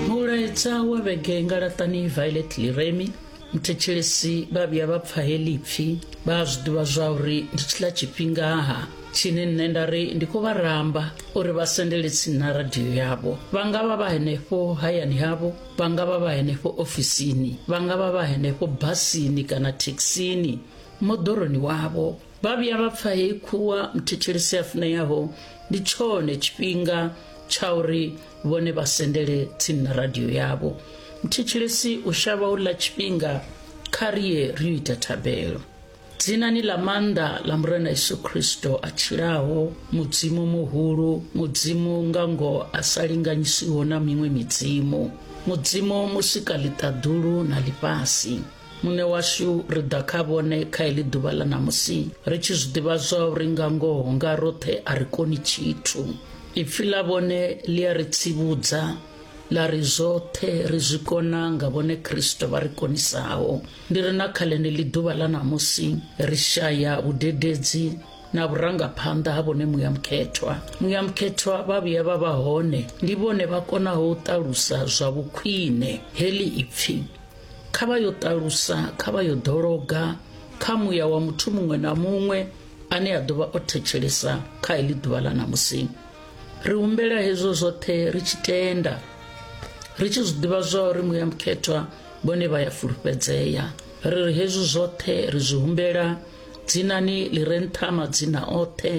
mulaedza wa vhege nga laṱani violet liremi mthetshelesi vha vhuya vha pfa heḽi pfhi vha a zwi ḓivha zwa uri ndi tshiḽa tshifhingaha tshine nṋe nda ri ndi khou vha ramba uri vha sendele tsini na radio yavho vha nga vha vha henefho hayani havho vha nga vha vha henefho ofisini vha nga vha vha henefho basini kana thekhisini moḓoroni wavho vha vhuya vha pfa heyi khuwa muthetshelesi a funeaho ndi tshone tshifhinga tsha uri vhone vha sendele tsini na radio yavho muthetshelesi u shavha u ḽa tshifhinga kha riye ri yo ita thabelo dzinani ḽa maanḓa ḽa murena yesu kristo a tshilaho mudzimu muhulu mudzimu nga ngoho a sa linganyisiho na miṅwe midzimu mudzimu musika ḽiṱaḓulu na ḽifhasi muṋe washu ri ḓa kha vhone kha heḽi ḓuvha ḽa ṋamusi ri tshi zwi ḓivha zwa uri nga ngoho nga roṱhe a ri koni tshithu ipfi ḽa vhone ḽi a ri tsivhudza ḽa ri zwoṱhe ri zwi kona nga vhone kristo vha ri konisaho ndi ri na kha ḽeneḽi ḓuvha ḽa ṋamusi ri shaya vhudededzi na vhurangaphanḓa ha vhone muya mukhethwa muya mukhethwa vha vhuya vha vha hone ndi vhone vha konaho u ṱalusa zwa vhukhwine heḽi ipfi kha vha yo ṱalusa kha vha yo ḓologa kha muya wa muthu muṅwe na muṅwe ane a ḓovha o thetshelesa kha heḽi ḓuvha ḽa ṋamusi ri humbela hezwo zwoṱhe ri tshi tenda ri tshi zwi ḓivha zwa uri muya mukhethwa vhone vha ya fulufhedzea ri ri hezwi zwoṱhe ri zwi humbela dzinani ḽi re nṱha madzina oṱhe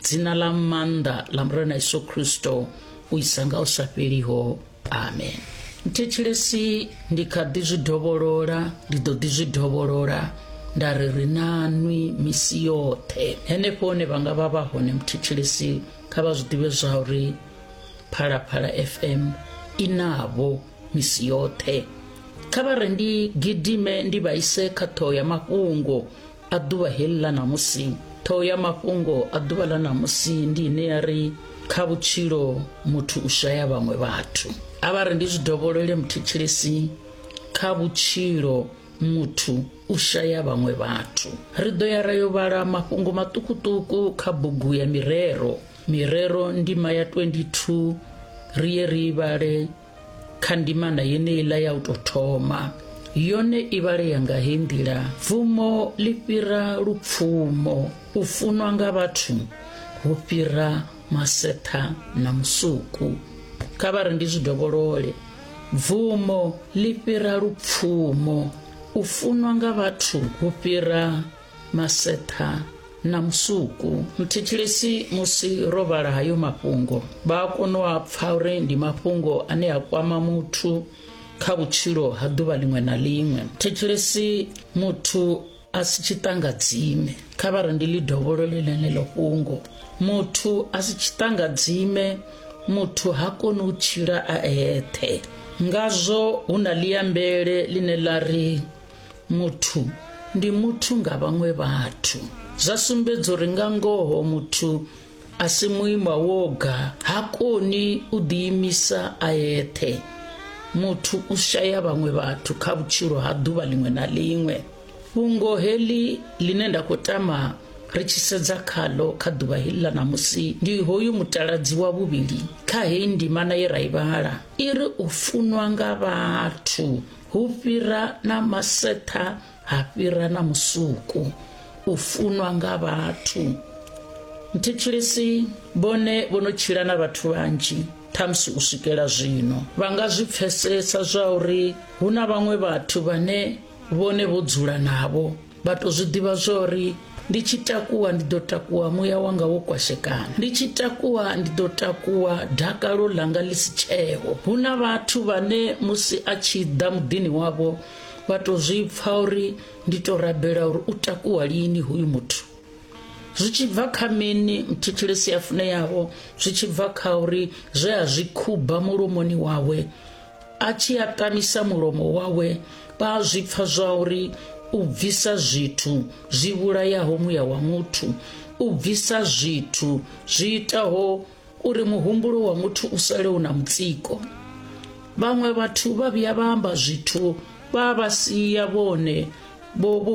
dzina ḽa maanḓa ḽa murena yesu kristo u isa nga u sa fheliho amen thetshelesi ndi kha ḓi zwi dovholola ndi ḓo ḓi zwi dovholola nda ri ri na nwi misi yoṱhe henefho hone vha nga vha vha hone muthetshelesi kha vha zwi ḓivhe zwa uri phalaphala fm i navho misi yoṱhe kha vha re ndi gidime ndi vhaise kha ṱhoho ya mafhungo a ḓuvha heḽi ḽa ṋamusi ṱhoho ya mafhungo a ḓuvha ḽa ṋamusi ndi ine ya ri kha vhutshilo muthu u shaya vhaṅwe vhathu a vha ri ndi zwi dovholole muthetshelesi kha vhutshilo muthu u shaya vhaṅwe vhathu ri ḓo ya ra yo vhala mafhungo maṱukuṱuku kha bugu ya mirero mirero ndima ya 22 ri ye ri vhale kha ndimana yeneiḽa ya u tou thoma yone i vhalea nga hei nḓila pfumo ḽi fhira lupfumo u funwa nga vhathu hu fhira masetha na musuku kha vha ri ndi zwi dovholole bvumo ḽi fhira lupfumo u funwa nga vhathu hu fhira maseṱha na musuku muthetshelesi musi ro vhala hayo mafhungo vha a kona u a pfa uri ndi mafhungo ane a kwama muthu kha vhutshilo ha ḓuvha ḽiṅwe na ḽiṅwe thetshelesi muthu a si tshiṱangadzime kha vha re ndi ḽi dovholole ḽeneḽo fhungo muthu a si tshiṱangadzime muthu ha koni u tshila a eṱhe ngazwo hu na ḽiambele ḽine ḽa ri muthu ndi muthu nga vhaṅwe vhathu zwa sumbedza uri nga ngoho muthu a si muima woga ha koni u ḓiimisa a eṱhe muthu u shaya vhaṅwe vhathu kha vhutshilo ha ḓuvha ḽiṅwe na ḽiṅwe fhungo heḽi ḽine nda khou tama ri tshi sedza khalo kha ḓuvha heḽi ḽa ṋamusi ndi hoyu mutaladzi wa vhuvhili kha heyi ndimana ye ra i vhala i ri u funwa nga vhathu hu fhira na masetha ha fhira na musuku u funwa nga vhathu nthitshilisi vhone vho no tshila na vhathu vhanzhi ṱhamusi u swikela zwino vha nga zwi pfesesa zwa uri hu na vhaṅwe vhathu vhane vhone vho dzula navho Vha tou zwi ḓivha zwa uri ndi tshi takuwa ndi ḓo takuwa muya wanga wo kwashekana ndi tshi takuwa ndi ḓo takuwa dakalo ḽanga ḽi si tsheho hu na vhathu vhane musi a tshi ḓa muḓini wavho vha tou zwi pfa uri ndi tou rabela uri u takuwa lini hoyu muthu zwi tshi bva kha mini muthetshelesi ya funeyaho zwi tshi bva kha uri zwe a zwi khuba mulomoni wawe a tshi a kamisa mulomo wawe vha a zwi pfa zwa uri u bvisa zwithu zwi vhulayaho muya wa muthu u bvisa zwithu zwi itaho uri muhumbulo wa muthu u sale u na mutsiko vhaṅwe vhathu vha vhuya vha amba zwithu vha vha sia vhone vho vho